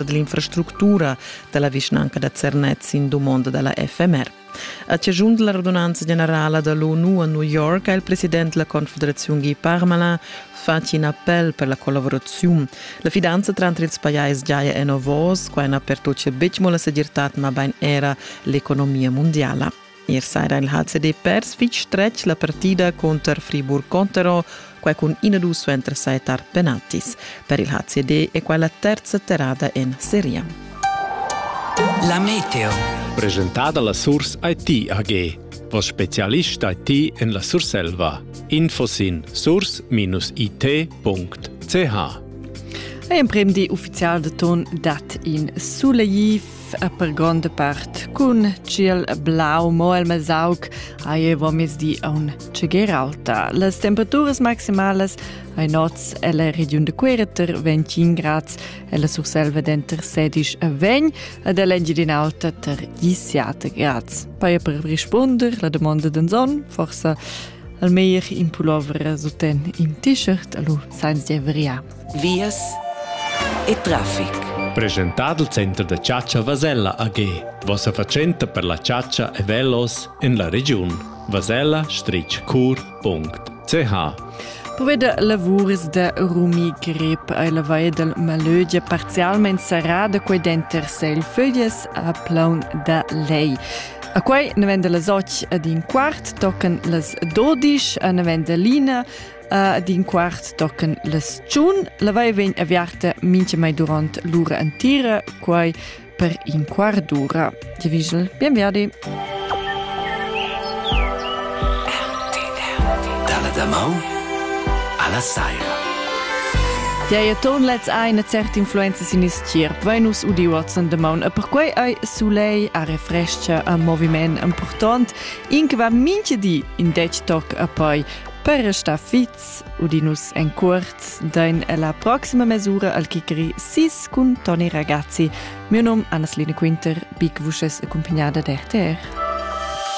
ed l'infrastructura da la vischnanca da Zernez sin dumonda da la FMR. A ciagiun da la radunanza generala da l'ONU a New York ha il president della Confederazione Guy Parmelin fatg in appel per la collaborazione. La fidanza tra ils pajais giaja en ovos, qua in per tuccia betg mo la segirtad ma ben era l'economia mondiala. Ier saira il HCD pers fitg stretg la partida cunter Friburg-Contero, quai cun 1-2 suenter sai tar penaltis. Per il HCD è quella terza terrada en seria. La meteo. Presentada la Surs IT AG, vos specialist IT en la Surselva. Info sin surs-it.ch. Emprem di ufficial de ton dat in sulegli e per gronda part cun tschiel blau, mo el mesauc ei vomizni aun tscheger alta. Las temperaturas maximalas ei nots ella regiun de Quereter 25 grads, ella Surselva denter 16 e 20 ed ell'Engiadin'Alta ter 17 grads. Poi per rispunder la domanda den Sonn, forse al meir in pullover suten in t-shirt, allo sainz de vria. vias e traffic. Presentà dal Center da chatscha Vasella AG, vossa fatschenta per la chatscha e velos en la regiun vasella-cur.ch. Poveda lavuris da Rumi Grip ei la vaia dal Malögia parzialmein serrada quei denter Seilföglias a Plaun da Lei. A quei ne venda las och ad in quart tocan las dodisch, a ne venda lina, Ad in quart tochen las tschun lavei vegn aviarta mincha mai durant l'ura entira, quai per in quart d'ura. Divigel, bienverdi. Dalla damau alla saira. Diei ton lets ai na cert influenza sin is tgierp, Venus u Diwatson de maun. E perquei ei Soleil a refrescha a moviment important, in che va minche di in dec toc a poi Per restar fits udinus en cuort dain ella proxima mesura al chicri sis cun Toni Ragazzi. Mio nom Anasline Quinter, big vusches accompagnada d'RTR.